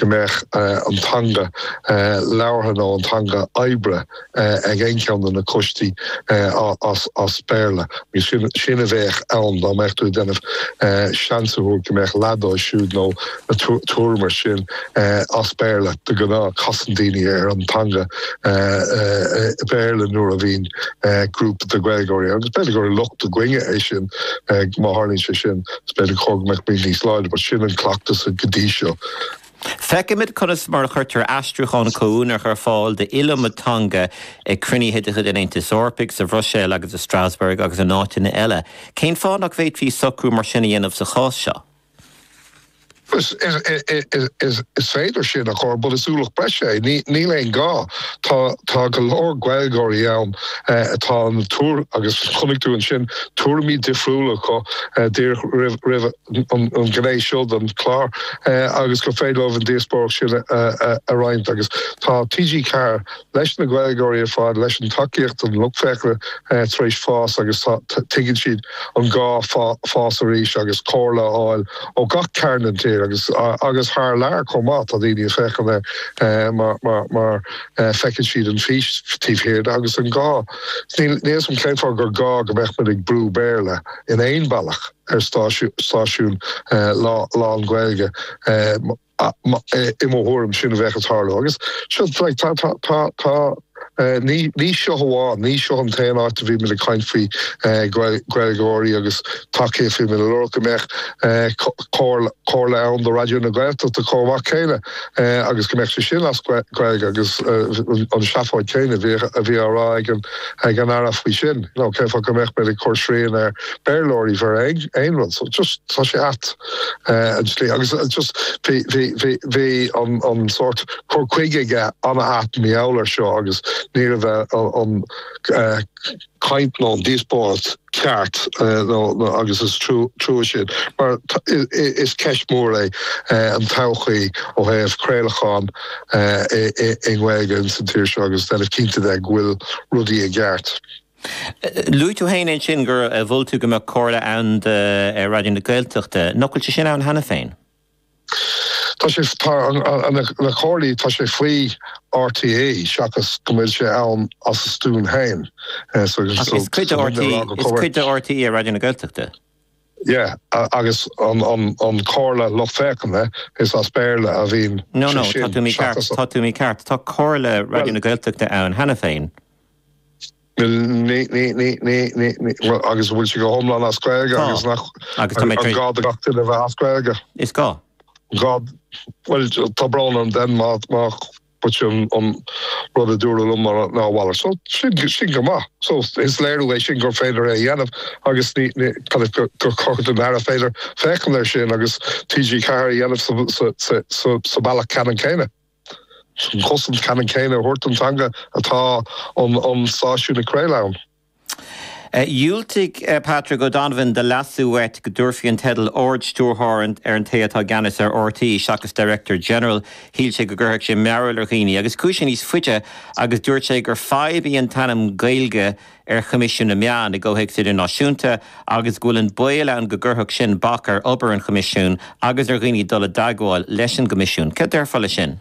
go mbeadh an teanga labhartha nó an teanga oibre ag aon cheann de na coistí as Béarla. Agus sin a bheadh ann dá mbeadh tú ag déanamh seans a thabhairt go mbeadh leath díobh siúd nó tuairim mar sin as Béarla. De ghnáth casann daoine ar an teanga Béarla nuair a bhíonn grúpa de Ghaeilgeoirí ann. Agus b'fhéidir gur locht againne é sin má tharlaíonn sé sin, is b'fhéidir gur cóir go mbeadh muid níos láidre, but sin an cleachtas go dtí seo. Feicimid conas mar a chuirtear aistriúcháin comhuaineach ar fáil d'iliomad teanga ag cruinnithe de chuid an Aontais Eorpaigh, sa Bhruiséil agus i Strasbourg agus in áiteanna eile. Cén fáth nach bhféadfaí socrú mar sin a dhéanamh sa chás seo? Is féidir sin a chur, but is ualach breise é. Níl aon ghá. Tá, tá go leor Gaeilgeoirí ann atá in ann teacht agus chonaic tú ansin tuairimí difriúla acu díreach roimh. an gné seo den chlár agus gur féidir leo an díospóireacht sin a roinnt agus tá TG4 leis na Gaeilgeoirí ar fad, leis an tacaíocht an lucht féachana tar éis fás agus tuigeann siad an gá fás arís agus comhairle a fháil ó gach cearn den tír agus agus thar lear chomh maith. Tá daoine ag féachaint air mar mar mar feiceann siad an fís taobh thiar de agus an gá. Níl a fhios agam cén fáth gur gá go mbeadh muid ag brú Béarla in aon bhealach. ar stáisiún lán-Ghaeilge. I mo thuairim, sin a bheadh ag tarlú. Agus tá, ní seo amháin, ní seo an t-aon áit a bhí muid ag caint faoi Ghaeilgeoirí agus tacaíocht, bhí muid ag lorg go mbeadh comhairle ann do Raidió na Gaeltachta chomh maith céanna agus go mbeadh sé sin as Gaeilge agus an tseafóid céanna a bhí á rá ag an Aire faoi sin, cén fáth go mbeadh muid ag cur srian ar. Béarlóirí maidir le aon rud so just tá sé at an tslí agus just bhí bhí bhí bhí an an sort cur chuige aige a bhain mar gheall ar seo agus ní raibh a an caint nó an díospóireacht ceart nó nó agus is trua trua sin mar is ceist mhór é an todhchaí ó thaobh craolachán i i i nGaeilge ins an tír seo agus déanamh cinnte de go bhfuil rudaí i gceart. Luaigh tú féin ansin gur mhol tú go mbeadh comhairle ann do Raidió na Gaeltachta. Nach bhfuil sé sin ann cheana féin? Tá sé na comhairlí, tá sé faoi RTÉ seachas go bhfuil sé ann as a stuaim féin. Right. Is cuid de RTÉ Raidió na Gaeltachta? Yeah, agus an Comhairle Lucht Féachana, is as Béarla a bhíonn sé sin nó níl? Tá tú mícheart, tá Comhairle Raidió na Gaeltachta ann cheana féin. Agus bhfuil sé go hiomlán as Gaeilge agus gá do gach duine bheith as Gaeilge? Is gá. Bhuel tá brón orm den má But sin an rud a dúradh liom ná a mhalairt. So sin go maith. So is léiriú é sin gur féidir é a dhéanamh agus gur chóir go dtig leis an Aire féachaint air sin agus TG4 a dhéanamh sa bealach ceannann céanna. An chosaint ceannann céanna a thabhairt don teanga atá an stáisiún ag craoladh ann. Dhiúltaigh Patrick O'Donovan do leasú uait go dtabharfaí an teideal 'Ard-Stiúrthóir' ar an té atá i gceannas ar RTÉ seachas 'Director General'. Shíl sé go gcuirfeadh sé mearbhall ar dhaoine agus chuaigh sé níos faide agus dúirt sé gur fadhb í an t-ainm Gaeilge ar Choimisiún na Meán i gcomhthéacs idirnáisiúnta agus go bhfuil an baol ann go gcuirfeadh sin bac ar obair an Choimisiúin agus ar dhaoine dul i dteagmháil leis an gCoimisiún. Céard a déarfá leis sin?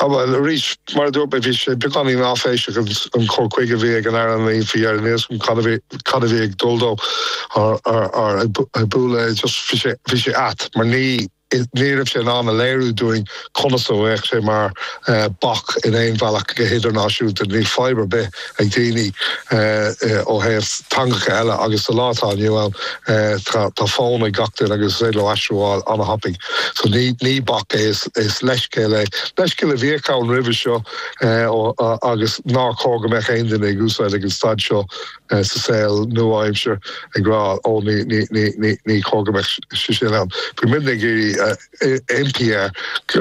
Á bhuel, arís, mar a dúirt mé, bhí sé beagáinín áiféiseach an cur chuige a bhí ag an Aire, like, n'fheadar, ní thuigim cad a bhí ag dul dó ar an mbealach, just bhí sé, bhí sé ait mar ní, ní raibh sé in ann a léiriú dúinn conas a bheadh sé mar bac in aon bhealach go hidirnáisiúnta, níl fadhb ar bith. ag daoine ó thaobh teangacha eile agus sa lá atá inniu ann tá fón ag gach duine agus is féidir leo aistriú a fháil an-thapaidh. So ní bac é, is leithscéal é. Leithscéal a bhíodh ann roimhe seo agus níor chóir go mbeadh aon duine ag úsáid ag an staid seo sa saol nua-aimsir ag rá 'Ó ní chóir go mbeadh sé sin ann'. Bhí muidne ag iarraidh impí ar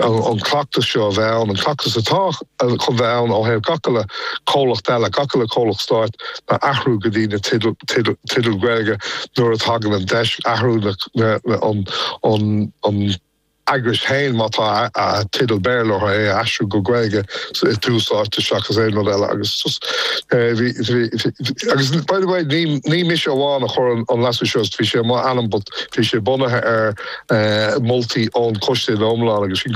an cleachtas seo a bheith ann, an cleachtas atá chun bheith ann ó thaobh gach uile comhlacht eile, gach uile comhlacht stáit ná athrú go dtí na teideal Gaeilge nuair a thagann an deis, athrú an eagrais féin má tá teideal Béarla orthu, é a aistriú go Gaeilge i tús áite seachas aon rud eile agus bhí, agus by the way ní mise amháin a chuir an leasú seo, bhí sé i m'ainm but, Bhí sé bunaithe ar mholtaí ón Choiste ina iomlán agus sin